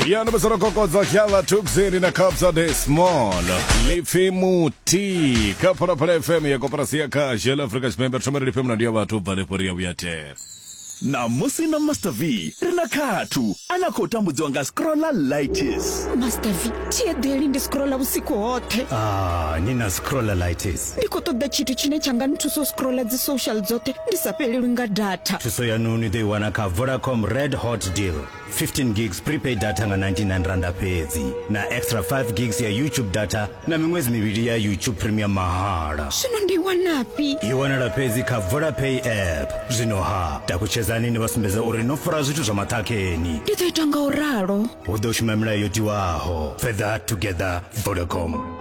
ya ndo musoro kokodzo kyala tuxini na kapsa de small lifi muti ka phalaphala fm ya koporasi ya kha shell africa tshipembe thomere life mna ndi ya vhathu bva lefho ri ya vhuya tere namusi na master v ri na khathu a na khou tambudziwa nga scrolla litis master v thi eḓeli ndi scrolla vhusiku hoṱhe Ah, ni na scrolleritis ndi khou ṱoḓa tshithu tshine tsha nga nthusa u scrolla dzi social dzoṱhe ndi sa fhelelwi nga data thuso yanu ni ḓo i wana kha vodacom red hot deal 15 gigs prepaid data nga 99 randa fhedzi na extra 5 gigs ya youtube data na miṅwedzi mivhili ya youtube premium mahala zwino ndi i wanafhi i wanala fhedzi kha vodapay app zwino ha takutshedzani ni vha sumbedza uri no fara zwithu zwa maṱhakheni ndi ḓo ita nga u ralo hu ḓo shuma milayo yo tiwaho further together vodacom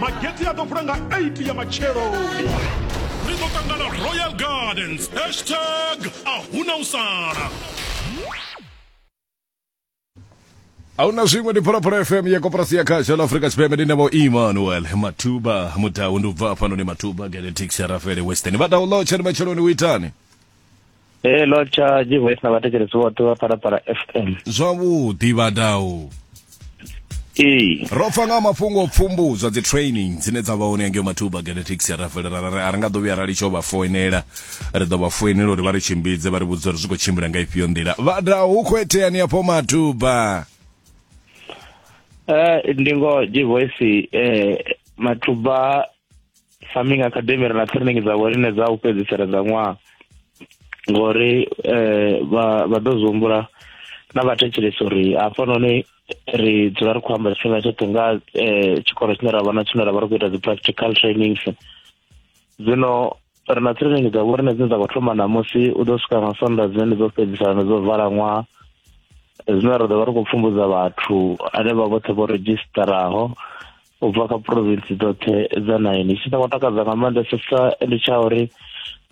mageti a ḓo vula nga 8 ya matsheloni ri ḓo ṱangana royal gardens hashtag a huna u sala ahuna zwiṅwe ndi phalaphala fm ya koporasi ya khasha la afrika tshipembe ndi navho emmanuel matuba mudau ndi u bva fhanoni matuba genetic sharafele western vha download tshani matsheloni u itani ee lord cha jivoice na vhathetshelesi vhoṱhe vha phalaphala fm zwavhuḓi vhadau ee ro pfa nga mafhungo o pfumbudzwa dzi training dzine dza vha hone angeo mathuba genetics ya rafele ra ra- a ri nga ḓo vhuya ra litsho vha foinela ri ḓo vha foinela uri vha ri tshimbidze vha ri vhudza uri zwi khou tshimbila nga ifhio nḓila vhada hu khou iteani afho mathuba Eh, ndi ngoho jivoice eh, mathuba farming academy ri na training dza vhorine dza u fhedzisela dza ṅwaha ngori eh, vha vha ḓo zwi humbula na vhathetshelesi uri hafhanoni ri dzula ri khou amba tshifhinga tshoṱhe nga eh, tshikolo tshine ra vha na tshine ra vha ri khou ita dzi-practical trainings zwino ri na training dza vho rine dzine dza khou thoma namusi u ḓo swika nga sonda dzine ndi dzo fhedzisana ndi dzo vala ṅwaha zwine ra ḓo vha ri khou pfumbudza vhathu ane vha vhoṱhe vho redzhisitaraho u bva kha province dzoṱhe dza nine tshine ngo takadza nga maanḓesesa ndi tsha uri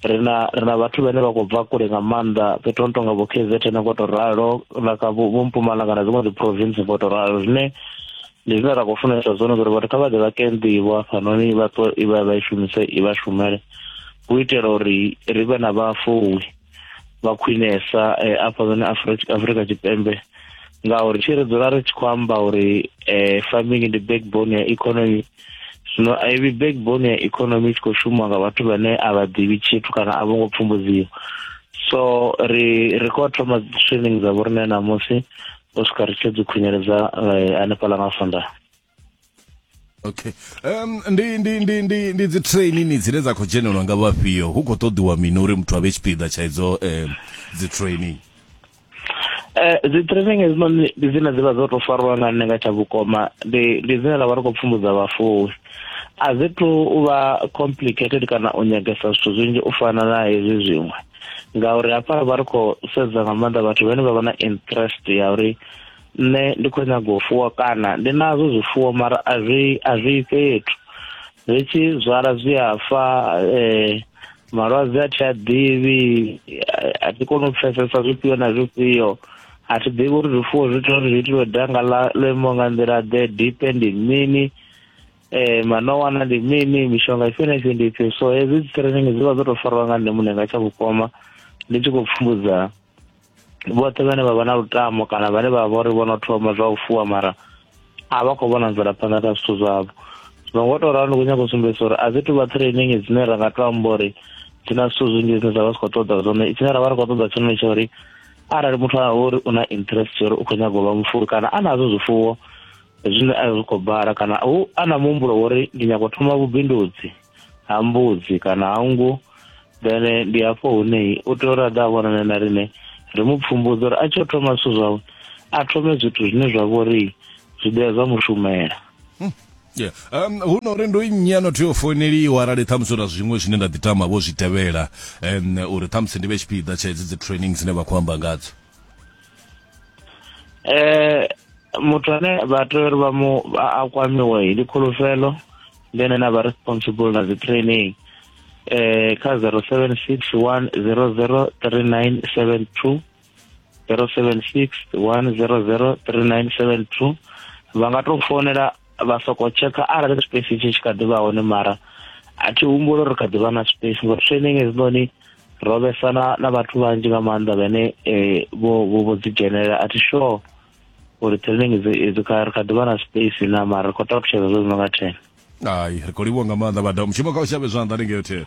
ri na ri na vhathu vhane vha khou bva kule nga maanḓa fhethu no tonga vho k z ne ngo to ralo na kha vho mpumalanga na dziṅwe dzi province ngo to ralo zwine ndi zwine ra khou funesa zwone uri vhathu kha vha ḓe vha ke nḓivho hafhanoni vha ṱo i vha vha i shumise i vha shumele u itela uri ri vhe na vhafuwi vha khwinesa eh, afha zone afrika tshipembe ngauri tshi ri dzula ri tshi khou amba uri eh, farming ndi backbone ya economy zwino a i vhi backbone ya economy i tshi khou shuma nga vhathu vhane a vha ḓivhi tshithu kana a vho ngo pfumbudziwa so ri ri khou thoma training dza vhoriṋe ṋamusi u swika ri tshi dzi khunyeledza eh, hanefhaḽa nga sondaha okay um ndi ndi ndi ndi ndi dzi trainini dzine dza khou dzhenelwa nga vhafhio hu khou ṱoḓiwa mini uri muthu a vhe tshipiḓa tsha idzo um dzi training eh, dzi training hedzinoni ndi dzine dzi vha dzo tou fariwa nga nṋe nga tsha vhukoma ndi ndi dzine ra vha ri khou pfumbudza vhafuwi a dzi to u vha complicated kana u nyagesa zwithu zwinzhi u fana na hezwi zwiṅwe ngauri hafha ri vha ri khou sedza nga maanḓa vhathu vhane vha vha na interest ya uri nṋe ndi khou nyaga u fuwa kana ndi nazwo zwifuwo mara a zwi a zwi fhethu zwi tshi zwala zwi a fa eh malwadze a thi a ḓivhi a thi koni u pfesesa zwifhio na zwifhio a thi ḓivhi uri zwifuwo zwi tea uri zwi itiwe danga ḽa ḽo imaho nga nḓila ḓe dipe ndi mini eh manowana ndi mini mishonga ifhio na ifhio ndi ifhio so hezwi dzi training dzi vha dzo tou fariwa nga nṋe muṋe nga tsha vhukoma ndi tshi khou pfumbudzana vhoṱhe vhane vha vha na lutamo kana vhane vha vha uri vho no thoma zwa u fuwa mara a vha khou vhona mvelaphanḓa na zwithu zwavho zwino ngo tou ralo ndi khou nyaka u sumbedzisa uri a dzi tuvha training dzine ra nga to amba uri dzi na zwithu zwinzhi zwine zwa vha zwi khou ṱoḓa zwone tshine ra vha ri khou ṱoḓa tshone tsha uri arali muthu a uri u na interest ya uri u khou nyaga u vha mufuwi kana a nazwo zwifuwo zwine a zwi khou bala kana u a na muhumbulo wa uri ndi nyaka u thoma vhubindudzi ha mbudzi kana ha nngu then eh, ndi hafho hune u tea uri a ḓa a vhonane na rine ri mu pfumbudza uri a tshi o thoma zwithu zwawe a thome zwithu zwine zwa vho ri zwi ḓea zwa mushumela Yeah. Um, hu no uri ndo nnyi ano tea u founeliwa arali ṱhamusi uri zwiṅwe zwine nda ḓi tama vho zwi tevhela um, uri ṱhamusi ndi vhe tshipiḓa tsha hedzi dzi training dzine vha khou amba ngadzo eh muthu ane vha tea uri vha mu a kwamiwe ndi khulufhelo ndi ene na vha responsible na dzi training eh kha 0761003972 0761003972 vha nga to founela vha soko tsheka arali space tshi tshi kha ḓi vha hone mara a thi humbula uri kha ḓi vha na space ngori training hezinoni ro vhesa na na vhathu vhanzhi nga maanḓa vhane eh, vho vho dzi dzhenelela a thi sure uri training idzo kha ri kha ḓi vha na space na mara ri khou ṱalutshedza zwo zwi no nga ten hai ri khou livhuwa nga maanḓa vhada mushumo kha u shavhe zwanḓa ni ngeyo thele